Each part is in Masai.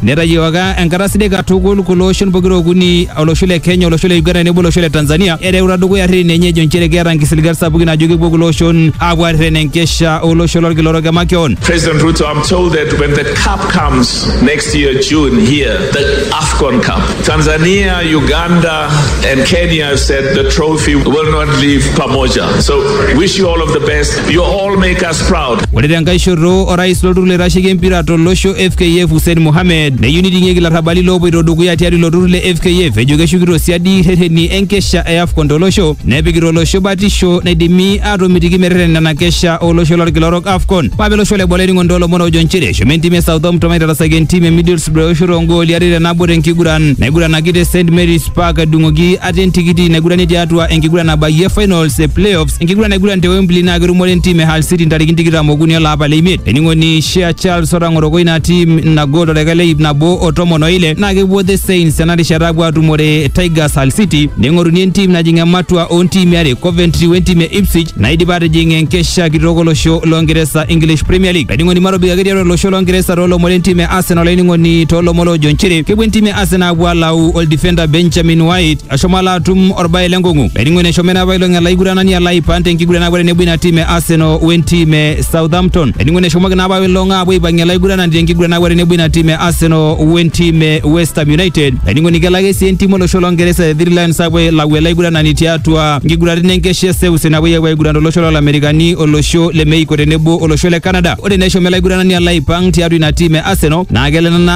Netayioka enkata sidai katukul kulo oshon pokira okuni olosho le Kenya, olosho le Uganda tenebo olosho le Tanzania ereuta dukuya irrereni enye ejo nchere keeta nkisiligat sapukin ajo kepuo kulo oshon aapuo aareren enkesha olosho lolkila orok emakeon. President Ruto, I'm told that when the cup comes next year, June, here, the AFCON Cup, Tanzania, Uganda, and Kenya have said the trophy will not leave Pamoja. So, wish you all of the best. You all make us proud. Ore tenkae shoto orais lolturur loitasheki empira tolosho FKF Hussein Mohamed neyieu niting'ieki larrabali loopoito dukuya tiatua ilo turur le FKF ejo keshukito siadi rreteni enkesha e AFCON tolosho nepikita olosho batisho naidimi aatomitiki merreten nena kesha olosho lolkila orok AFCON. Mape olosho le Bola eningo ntoolomon oojo nchere eshomo entim e Southampton aitarasaki entim e Middlesbrough eoshoto oongooli are te nabo tenkiguran naiguranaki te St Mary's Park edung'oki ate entikiti naigurani tiatua enkiguran nabayie finals e playoffs Enkiguran naiguran te Wembley naa ketumore entim e Hull City ntarikini tikitam okuni olapa le imiet. Ening'oni Shea Charles otang'oroko ina tim ina gol toldaika le ip nabo o tomon o ile naa kepuo The Saints tena rishata apuo atumore Tigers Hull City neing'oruni entim najing ematua oo ntiimi are Coventry we ntim e Ipswich naidipa atijing enkesha kitok olosho loo Ngeresa English Premier League. Laining'oni matobik ake tiatua olosho loo Ngeresa too lomon le ntim e Arsenal laining'oni too lomon loojo nchere kepuo entim e Arsenal apuo alau oldifenda Benjamin White ashomo ala atum orbae lenkong'u laining'oni eshomo ena apailong ala aiguranani ala aipan tenkiguran apuo tenebo ina tim e Arsenal wentim e Southampton laining'oni eshomoki naa apailong apuo aipang'ie ala aiguranani tenkiguran apuo tenebo ina tim e Arsenal wentim e West Ham United laining'oni kelo ake sii entim olosho longeresa the Three Lions apuo ailau ele aiguranani tiatua nkiguraritin enkesha e seuse napuoi apuo aiguran tolosho lolamerikani olosho le Mexico tenebo olosho le Canada ore naa eshomo ele aiguranani ala aipang tiatua ina tim e Arsenal naa kelo ena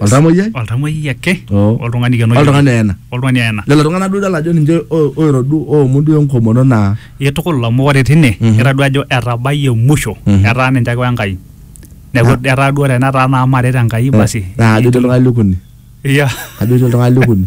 Oltamoyiai? oltamoyiai ake Oo. oltung'ani keno Oltung'ani oyena. oltung'ani oyena Lelo tung'anak duo idol ajo ninche o- oiro duo oomu duo enkomono naa itukul amu ore tine Mhm. ira duo ajo etabayie musho Mhm. etaa ninche ake wenkai neeku Ah. etaa duo tenetaa naa maret enkai basi naa ajo etii oltung'ani likuni. Iya. Ajo etii oltung'ani likuni.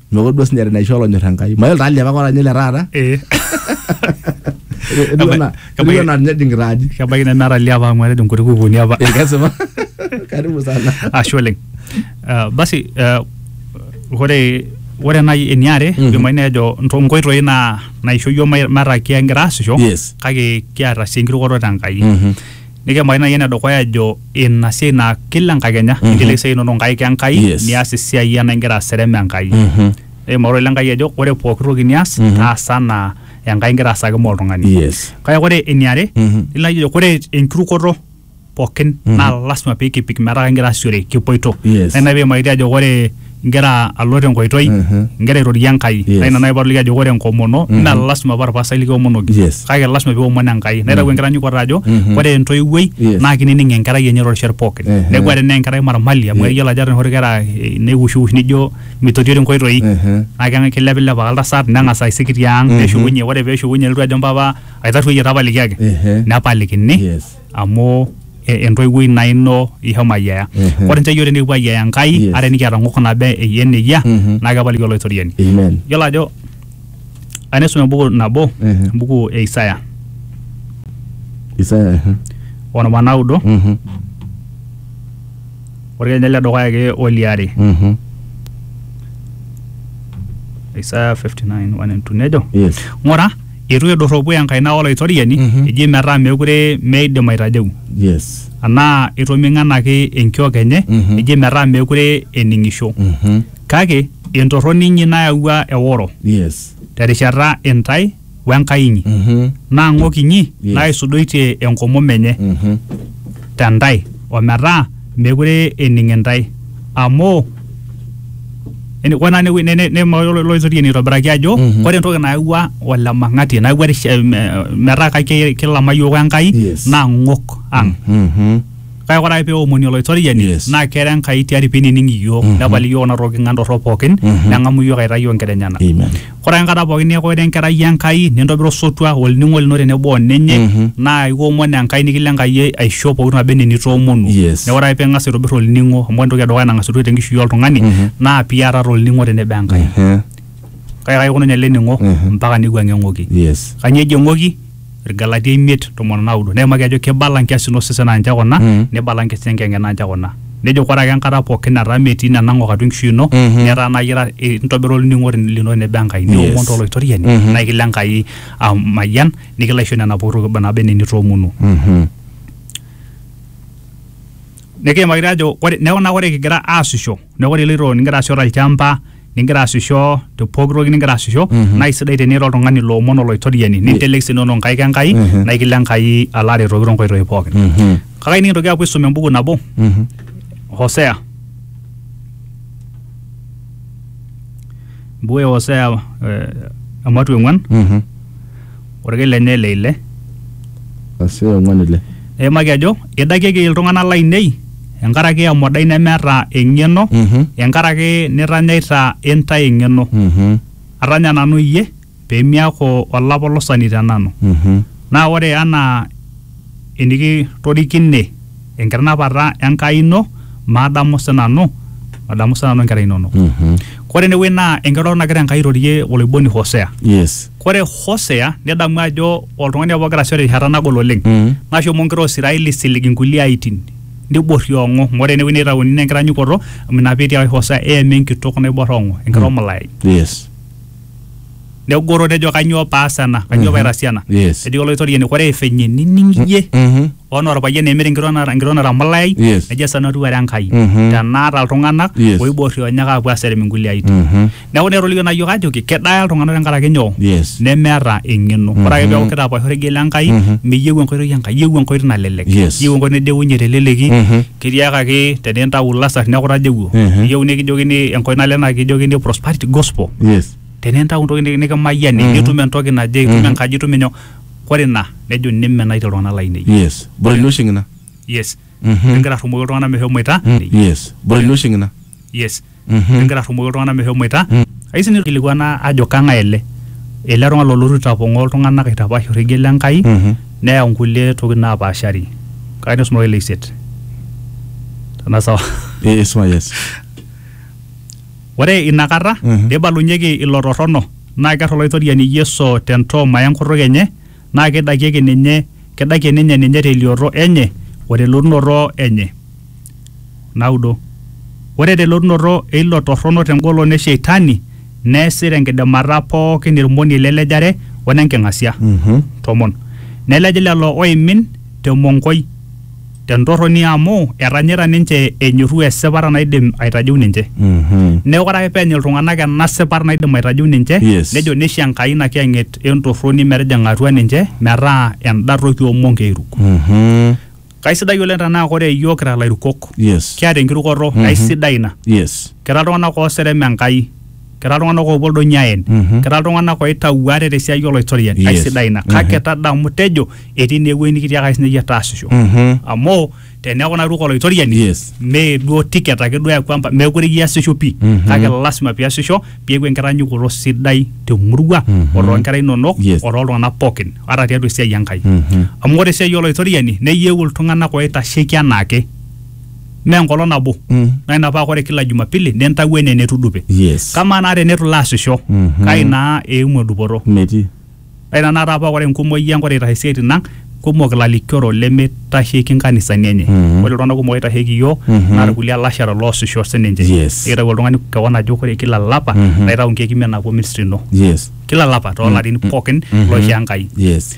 Mekure duo sinyati naisho olonyor Enkai. Mayiolo taa liapa kora ninye le taata. Eh, Etiu enaa- etiu enaa ninye ejing'ita aji. kebaiki nemeeta liapa amu etejo nkuti kukuuni apa Eh, kesipa. Karibu sana. ashe oleng Ah, basi ah, ore ore nai eniare Mhm. idimayu nejo nto- nkoitoi naa naisho yiok mai- metaa kigira aasisho Yes. kake kiata sii enkirukoto te Enkai Mhm. Nikiimaki naaji enedukuya ejo ina siai naa kila enkakenya mm -hmm. inteleki esiai inono nkaik Enkai yes. nias esiai ena ingira aserem Enkai mm -hmm. Eima orore Enkai ejo ore pooki toki nias mm -hmm. taasa anaa Enkai ingira aasaki moo oltung'ani yes. Kake ore eniare mm -hmm. nilo ajo ore enkirukoto pookin mm -hmm. naa lasima pee kipik metaa kingira aasishore kipoito yes. Naa ina pee iimaki ajo ore ingira alo tenkoitoi Mhm. ingira airorie Enkai Yes. naa ina naaji paatoliki ajo ore enkomono naa lasima paa orpasai likiomonoki Yes. kake lasima piomon Enkai naitau enkitanyaanyukoto ajo Mhm. ore entoiwuoi Yes. naa kinining enkerai enye torishot pookin Mhm. neeku ore tenaa enkerai marmali amu ekiyiolo ajo ata enoshi kera eh, neiwushiwush nijo mitotio tenkoitoi Mhm. naa keng- kilepilep ake oltasat neng'as aisik tiang Mhm. neshukunye ore peeshukunye nelotu ajo mpapa aitarruoyie tapalikiaki Ehe. nepalikini Yes. amu e- entoiwuoi naa ino ishomo ayiaya Mhm. ore nche yiok tenikipuo ayiaya enkai Yes. ate nikiata ng'ok naba eyie nejia Mhm. naa kepaliki olaitoriani Amen. yiolo ajo anisum embuku nabo Mhm. embuku e Isaya Isaya. mhm. onom anaudo Mhm. orkenya le dukuya ake oliare Mhm. Isaya 59 1 and 2 nejo Yes. ng'ura eitu edorropu enkaina Olaitoriani Mhm. eji metaa meekure meidim aitajeu yes anaa eitoming'anaki enkiok enye Mhm. eji metaa meekure ening'isho Mhm. kake entorroni inyi nayawua eworo yes terishata intae w'Enkai inyi Mhm. naa ng'ok inyi Yes. naaisudoitie enkomom enye Mhm. te ntae ometaa mekure ening intae amu ene- ore naa ene- ne- ne- ne- ilo oitoriani aitobiraki ajo Mhm. ore entoki nayawua olemang'ati nayawua rish- eh, me- metaa kake- kilama yiok enkai Yes. naa ng'ok ang Mhm. kake ore ake peomoni olaitoriani Yes. naa kera enkai tiari pinining iyiok Mhm. nepal iyiok kuna tokitin ng'an torrok pookin Mhm. neng'amu iyiok aitai iyiok nkera enyenak Amen. Ore ake enkata pooki neaku ira enkerai Enkai nintobira osotua olning'o lino tenebo o ninye Mhm. naa iomon Enkai nikilo Enkai aisho pooki toki naba enaa enitoomonuo. Yes. Neaku ore ake ping'as aitobir olning'o amu ore entoki edukuya nang'as aitukuj tenkishui oltung'ani Mhm. naa piatata olning'o tenebo Enkai. Ehe. Kake kaikununye ele ning'o Mhm. mpaka neiwuang'ie eng'oki. Yes. Kanyoo eji eng'oki? Irgalatia imiet tomon onaudo neimaki ajo keibala nkiasin osesen aa ninche kuna Mm. neibala nkiasin enkiyang'et aa ninche kuna nejo ore ake enkata pookin nataa metii nena ng'ok atua enkishui ino Mhm. netaa naa iyira eh, intobira olning'o lino tenebo Enkai niomon Yes. toloitoriani Mhm. naa ekilo Enkai amayian nikilo aisho nena pooki toki naba enaa enitoomonuo Mhm. nikiimaki taa ajo ore neeku naa ore kigira aasisho neeku ore iloito nigira aasisho tolchamba ningira aasisho te pooki toki ningira aasisho Mhm. naa isidai tenira oltung'ani loomon olaitoriani nintelek sii inono nkaik enkai Mhm. naa ikilo enkai alo aretoki tonkoitoi pookin Mhm. kake nikintoki aapuo aisum embuku nabo Mhm. hosea embuku e hosea eh, ematua eng'uan Mhm. Orkil lenye le ile. Asi ong'uan ile. Neimaki ajo, Idakieki iltung'ana laainei enkaraki emodai nemeeta eng'eno, enkaraki nitanyaita intae eng'eno. Atanya nanu iyie pee miaku olapolosani te nanu. Naa ore anaa enikitorikine. enkitanapata Enkai ino madamu sinanu madamu sinanu inkera inonok Mhm. kore enewueji naa enkiroroto nagira Enkai airorie oloiboni Hosea Yes. kore Hosea nidamu ajo oltung'ani apa ogira asisho terishata nagol oleng Mhm. nashomo inkera o Israeli aisilig inkulie aitin niborriong'o amu ore enewueji neitauni naa enkitanyukoto amu ina peetii apa Hosea eema enkitok naibor ong'o enkira omulayai Yes. negoro nejo kanyoo paas ena kanyoo Mhm. paitaas ena Yes. ejo olaitoriani kore venye nining iyie Mhm. Ono orpayian emir enkitok nara- enkitok natamulayai Yes. nejo esaa natiu are Enkai Mhm. tenaata iltung'anak Yes. oiborri onyak aapuo aserem inkulie aitin Mhm. neeku naa etolikio naa yiok ajoki kedaya iltung'anak tenkaraki nyoo Yes. nemeeta eng'eno ore ake peeku kitapaash orregie le Enkai Mhm. miyieu enkoitoi e Enkai iyieu enkoitoi nalelek Yes. iyieu enkoitoi nideunye teleleki Mhm. ketiakaki tenintau ilasar neeku tajewuo Mhm. iyieu nikijokini enkoitoi nalelek naa kijokini prosperity gospel Yes. tenintau entoki niki- nikimayiani Mhm. nitum entoki naje itum Mhm. enkaji itum inyoo Kore ina nejo nimenaitie iltung'ana lainei. Yes. Bore ilo oshi ng'ina. Yes. Mhm. Pigira arrumoki iltung'ana meshomoita. Yes. Bore ilo oshi ng'ina. Yes. Mhm. Pigira arrumoki iltung'ana meshomoita. Mm. Ayeu sii nikilikuana ajo kang'ae ele? Ele tung'ani lolotu aitapong'oo iltung'ana aitapaash orregie le Nkai Mhm. neyau nkulie tokitin naapaashari. Kake nisum ake ele isiet. Tenaa sawa. Ee esupa yes. Ore ina kata neibalunyeki ilo torrono, naa kear Olaitoriani Yesu te ntooma e nkutuk enye, naa keidakieki ninye, keidakie ninye ninye te elioto enye o te elotunoto enye. Naudo. Ore te elotunoto e ilo torrono te engolon e sheitani, neesi te nkidimata pooki ilmoniei le lejare o ne nking'asia. Tomon. Nelej lelo oimin. te monkoi, te ntorroni amu etanyaita ninche enyorru esipata naidim aitajeu ninche. Mhm. Neeku ore ake peenya iltung'anak ena sipata naidim aitajeu ninche, Yes. nejo neisho Enkai ina kiyang'et e ntorroni metijing'a atua ninche metaa enda toki oo monkei eiruk. Mhm. Kaisidai oleng tenaa ore iyiook kira ilairukok, Yes. kiata enkirukoto aisidai ina. Yes. Kira iltung'anak ooserem Enkai. kira iltung'anak oopuo oldonyo aen Mhm. kira iltung'anak oitau ate tesiai oloitoriani Yes. aisidai ina kake tadamu tejo etii naa ewueji nikitiakaki sinye iyie taasisho Mhm. amu teneeku naa ituuko oloitoriani Yes. mee duo ticket ake duo eeku empa- meekure iasisho pii Mhm. kake lasima piasisho piaku enkitanyanyukoto sidai temurua Mhm. o toonkera inonok Yes. o tooltung'anak pookin ata tiatua esiai Enkai Mhm. amu ore esiai oloitoriani neyieu iltung'anak oitasheki anaake mee enkolong nabo Mm. naa ina paa ore kila jumapili nintawuo enaa enetudupe yes kamaa naa teneitu ilo asisho Mhm. kai naa eimu edupoto metii ore tenakata paa ore enkumoi ang ore eitashe isiaitin ang kumok ilalikioro lemeitasheki nkanisani enye Mhm. ore iltung'anak kumok oitasheki iyiook Mhm. naa irkulie alashara loosisho sininche Yes. eitayu oltung'ani kewon ajo ore kila lapa Mhm. naitau nkeek imiet napuo ministry ino yes kila lapa toolarin pookin Mhm. loisho Enkai yes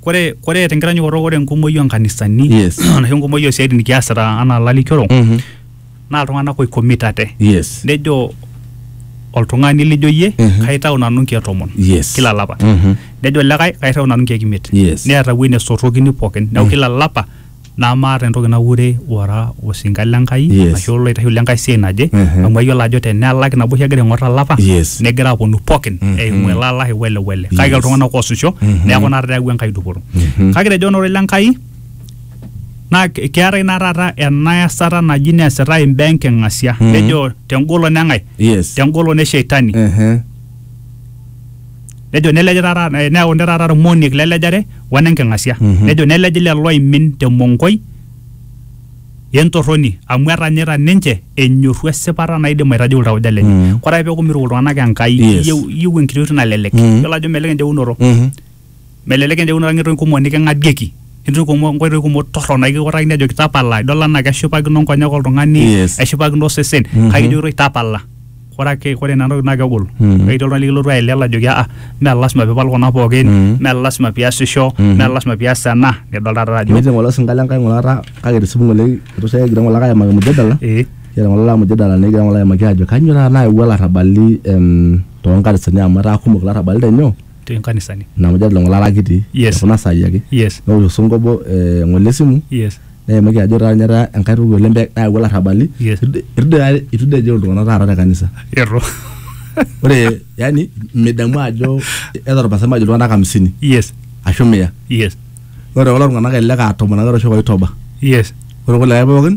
Kore kore tenkitanyaanyukoto ore enkumoi onkanisani Yes. anashu enkumoi osiaitin nikiasita anaa lalikioro Mhm. naa iltung'anak oikomitate. Yes. Nejo oltung'ani lijo iyie Mhm. kaitau nanu nkeek tomon Yes. kila lapa. Mhm. Nejo likae kaitau nanu nkeek imiet. Yes. Neeta ewuei nesotokini pookin. Neeku kila lapa namaata entoki naure ora osinka le Nkai Yes. ashu oloitasheki le Nkai siai naje Mhm. amu ayiolo ajo tenelaki nabo oshi egira aing'or olapa Yes. negira aponu pookin Mhm. eimu ele ala wele wele kake Yes. iltung'anak oosisho Mhm. neeku naa eyawua Enkai dupoto Mhm. kake tejo ororei le Nkai naa ke- keetae naa taata ena esata naji neesitae imbaa enking'asia Mhm. nejo tengolon eng'ae yes tengolon e sheitani Mhm. nejo nelej taata eh, neaku nte taata irmoniek lelejare wenenking'asia nejo nelej lelo oimin temonkoi entorroni amu etanyaita ninche enyorru esipata naidim aitajeu iltauja lenye Mm. kore ake peeku miruko iltung'anak enkai Yes. iyieu iyieu enkiti oitoi nalelek Mm. yiolo ajo melelek enjeunoto Mhm. Melelek enjeunoto ang etum kumok niking'adieki etum kumok nkoitoi kumok torrok naikikutakini ajoki tapala idol anaa keshipakino nkonyek oltung'ani Yes. eshipakino osesen Mhm. kake kijokitoi tapala ore ake ore nena tokitin naa kegol Mhm. ketii oltung'ani likilotu aelewa ajoki aa mee lasima piipal kuna pookin Mhm. mee lasima piasisho Mhm. mee lasima pias ena nidol taata ajo Metii ng'ole osinka le Nkai ng'ole taata kake tesipu ng'ole itu sai egira ng'ole ake aimaki mujadala. ee Egira ng'ole ake mujadala negira ng'ole aimaki ajo kanyoo taata naewuo ilarrabali em, toonkanisani amu etaa kumok ilarrabali tenyoo te nkanisani ina mujadala oo ng'ole kiti Yes. te kuna saai ake yes newosh osongo obo eh, ng'ole esimu yes neimaki ajo taata ninye etaa enkae toki oleng pe- nayawua larrabali Yes. Irdi- irdi- itu dii ejo iltung'anak taata te kanisa ero ore yani midamu ajo etorpasai majo iltung'anak hamsini yes ashu mia yes ore kulo tung'anak elelek aa tomon ake etoishoki oitoba yes ore kulikae pookin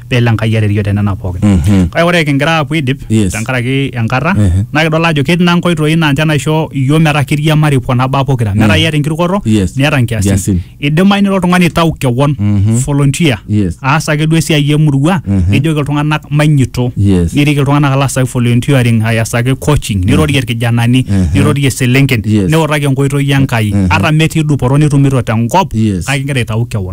pelo Enkai arerio te nena pookin. Mhm. Kake ore kingira aapuo aidip Yes. tenkaraki enkata Ehe. naa kidol ajo ketii naa nkoitoi naa ninche naisho iyiook metaa kiriamari kuna baa pokira metaa iyata enkirukoto Yes. niata Nkiasin. nkiasin. Idimayu nilo oltung'ani aitau kewon Mhm. volunteer Yes. aas ake duo esiai emurua Mhm. nijoki iltung'anak mainyito Yes. nirik iltung'anak alo aasaki volunteering ayasaki coaching nirorie irkijanani Mhm. nirorie iselenken Yes. niutaki enkoitoi Enkai Mhm. ata metii dupoto nitumito tenkop Yes. kake ingira aitau kewon.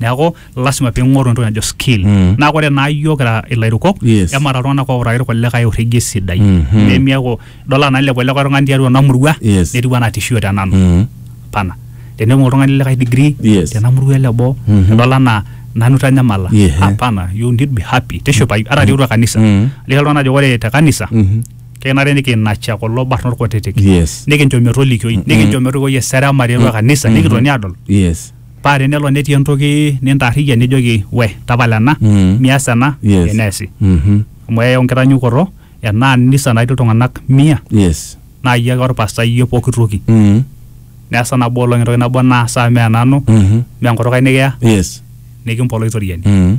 neeku lasima ping'oru entoki najo skill Mm. naa ore naa iyiok kira ilairukok Yes. emaata iltung'anak outaki irkulikae orregie sidai Mhm. nemiaku idol anaa ilepu ele tung'ani tiatua ena murua Yes. netiu anaa tishio te nanu Mm. pana teneibung oltung'ani likae degree Yes. tena murua ele boo Mhm. idol anaa nanu itanyamala Yeah. hapana you need be happy tishipayu ata tiatua kanisa Mm. liki iltung'anak ajo ore te kanisa Mhm. kenare nikinacha kulo barnot kutitik Yes. nikincho metolikioi nikincho metorikoi eserema tiatua kanisa nikitoni adol Yes. paa tenelo netii entoki nintaarrikia nijoki we tapala ena Mm. mias ena Yes. eneesi Mhm. amu eyau nkitanyukoto enaa nisa natii iltung'anak mia Yes. naa iyie ake orpasta iyie pooki toki Mm. neesa nabo olong entoki nabo naasa mee nanu Mhm. mee enkutuk ai nikiya Yes. nikimpolo aitoriani Mm.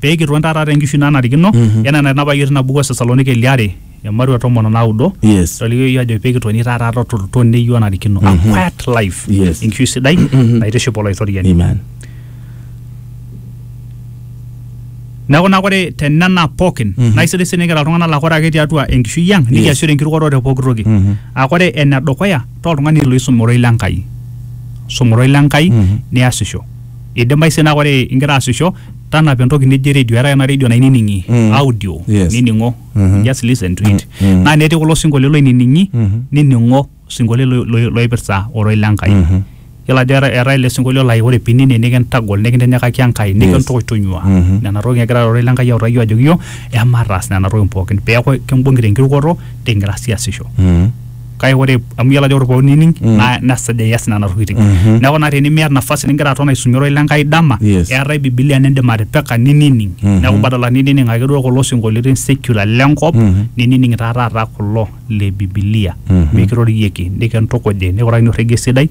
pee kiton taata te nkishui nanarikino Mhm. enaa enanapa iyiook tina buku e Thessaloniki ile are emarua tomon o naudo Yes. itolikio iyiook ajo pee kitoni taata to- to- toneyu onarikino a Mhm. quiet life Yes. enkishui sidai Mhm. naitiship olaitoriani Amen. neeku naa ore tenena pookin Mhm. naa isidai sii nikira iltung'anak laa ore ake tiatua enkishui ang nikiasishore enkirukoto te pooki toki Mhm. aa ore ene dukuya taa oltung'ani loisum ororei le Enkai sum ororei le Enkai Mhm. niasisho idimayu sii naa ore ingira aasisho tanapa entoki nijo eredio eetae ena redio nainining'i Mm. audio Yes. nining'o Mhm. just listen to it Mm, mm. naa netii kulo sinkolio loinining'i Mhm. nining'o sinkolio lo- lo- loipirta oroi le Enkai Mhm. yiolo ajo eeta- eetae ele sinkolio lai ore pinining nikintagol nikintinyikaki Enkai nikintonyua Mhm. nena tokitin egira ororei le Enkai autaki ajoki yiok emataas nena tokitin pookin peeku kimbung'i tenkirukoto tingira siasisho Mhm. kake ore amu iyiolo ajo ore pooki nining Mm. naa nesuj ias nena tokitin Mhm. neeku naa tenimiata nafasi nigira aton aisumie ororei lenkai dama Yes. eetae bibilia nindim atipika ninining Mhm. neeku badala ninining ake duo kulo sinkolioitin secular lenkop Mhm. ninining taa taata kulo le bibilia Mhm. mikirorieki nikintukuji nikurakini orregie sidai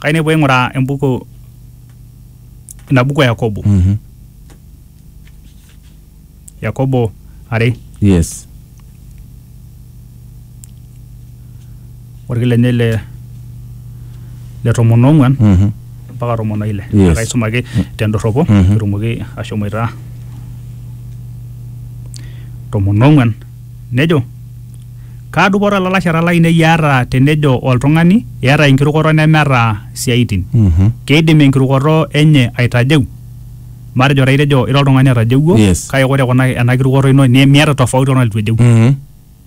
kayieu nikipuo aing'uraa embuku ina buku e yakobo Mhm. yakobo are yes orkil lenye le le tomon oong'uan Mhm. mpaka tomon oile Yes. Naa kaisum ake tendorropo Mhm. pitumoki ashomoita tomon oong'uan Nejo, Kaa dupoto ilalashera lainei eata tenejo oltung'ani, 'Eata enkirukoto nemeata isiaitin'? Keidim enkirukoto enye aitajeu? Matejo taa itejo ira oltung'ani otajeuo, Yes. kake ore kuna ena kirukoto ino ne- miata tofauti oltung'ani leitu ejeu.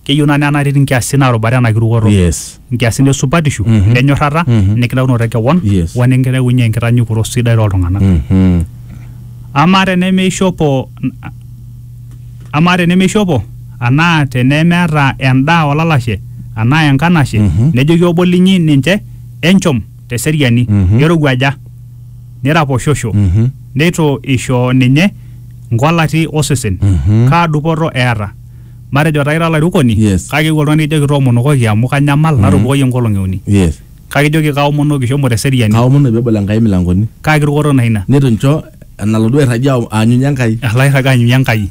Keyieu naa nena katitin kiasie naarubare ena kirukoto. Yes. nkiasin e supatishu Mhm. enyorrata Mhm. enikitaunoto e kewon Yes. o enikintayunye enkitanyukoto sidai tooltung'anak Mhm. amaa tenemeishopo amaa tenemeishopo anaa tenemeeta endaa olalashe anaa enkanashe Mhm. nejoki obo linyi ninche enchom teseriani Mhm. nerowuaja niraposhosho Mhm. neitu isho ninye nkolati osesen Mhm. kaa dupoto eeta matejo taa ira olairukoni Yes. kake eewuo oltung'ani nikijoki toomonokoki amu kanyamal natupukoyie nkolong'i uni yes kake ijoki kaomonoki shomo teseriani kaomonu peebol enkai milangoni kake kirukoto naa ina nitu ncho enalo duo airragie ao- aanyunye enkai alo airraga anyunye enkai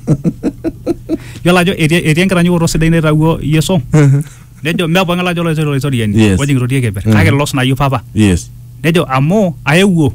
yiolo ajo etii etii enkitanyanyukoto sidai naitawuo yeso nejo mee pooki ng'ae lajo olaisori olaisoriani Yes. ojing irotie keper Mhm. kake los nayieu papa yes nejo amu aewuo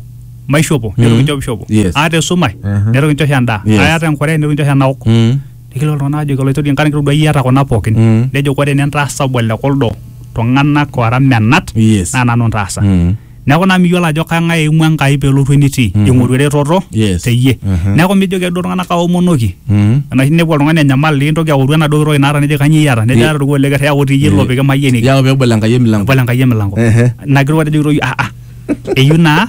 maishopo neitu Mhm. kinchop ishopo Yes. aata esumash Aha. neitu kinchosho endaa Yes. aata enkure neitu kinchosho enaok Mm. Nikilo iltung'anak ajoki oloitoriani nkaraki kitodua iata kuna pookin. Mm. Nejo ore ene ntaasa obo le kuldo tung'anak oora menat Yes. naa nanu ntaasa. Mm. Neeku naa miyiolo ajo kang'ae eimu Enkai peelotu enitii. Mhm. Ing'oru eretoto Yes. teyie. Mhm. Neeku mijoki ake duo iltung'anak aomonoki. Mm. Enoshi ninepu oltung'ani enyamal nintoki aoru enaduo toki naata nejoki kanyoo iata? Nejo Ye- aata orkuo le ker yau ti iyie ilo Eh. pikimayieniki. Yau pebol Enkai emilango. Ebol Enkai emilango. Ehe. Ina kiro atejo kitoki ah ah. Eyieu naa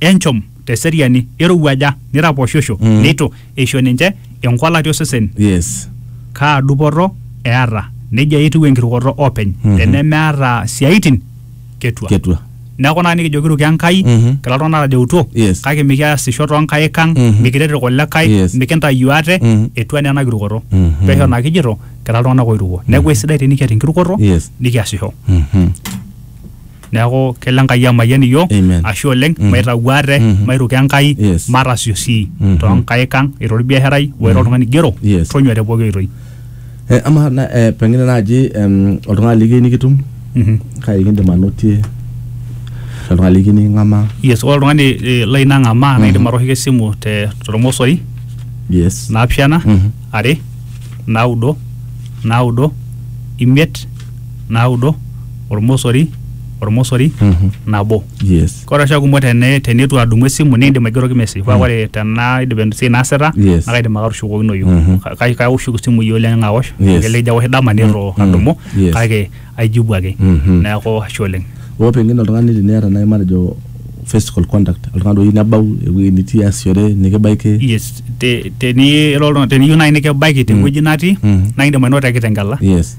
enchom te seriani irowuaja niraposhosho Mm. neitu eisho ninche enkualati osesen yes kaa dupoto eata nejia etiu enkirukoto openy Mhm. tenemeata siaitin ketua ketua neeku naa nikijo kiruki enkai Mhm. kila tung'anak atajeutuo Yes. kake mikiasisho toonkaik ang Mhm. mikiret irkulikae Yes. mikintayu ate Mhm. etua naa ena kirukoto Mhm. pesho naa kijito kira iltung'anak oiruko neeku esidai tenikiata enkirukoto Yes. nikiasisho Mhm. neaku kelo enkai amayian iyiook Amen. ashe oleng Mhm. maitau ate Mhm. mairuko enkai Yes. matasio sii Mhm. toonkaik ang ira olbiasharai o ira oltung'ani igero Yes. tonyua te pooki oitoi Eh, amaa na- eh, pengine naaji em, oltung'ani likiyieu nikitum Mhm. kai kindim anotie oltung'ani likiyieu niking'amaa yes ore oltung'ani eh, lai nang'amaa naa indim atooshoki esimu te tormosori yes naapishana Mhm. are naudo naudo imiet naudo ormosori ormosori Mhm. nabo yes ore oshi kumok tene tenitu adumu esimu niindim aigeroki message paa ore tenaa idip esiai naasita Yes. naa kaidim ake atushukokinoyu Mhm. Ka- kai- kaoshoki esimu iyie oleng aosh Yes. kelelek ijo aosh dama nitu Mm, adumu mm, yes. kake aijibu ake Mhm. neeku ashe oleng oo pengine oltung'ani teniata naaji matejo physical contact oltung'ani oyieu nebau ewueji nitii aasishore nikibaiki yes te- teni- ira oltung'ani- teniyieu naaji nikibaiki tewueji natii Mhm. naa indim ainoto te kitengela yes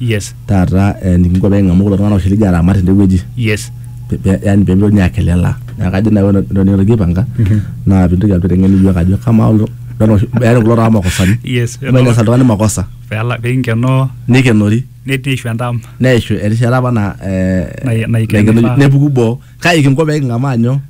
yes taata eh, nikinko pee king'amu kulo tung'anak oshi lijo aramat tendewueji yes pe- pe- yani pee mitokini akelelaa neeku kajo naaji ore entoki nikigira aipanga naa pintoki alotu aiteng'en iyiok ajo kamaa kulo tung'anak oshi- yani kulo tung'anak makosani yes mainasa oltung'ani makosa pela pinkenoo nikenori net- neishu endam neishu erishata apa na eh, Nai- naikenori. naikenori, nepuku boo kai kinko pee king'amaa nyoo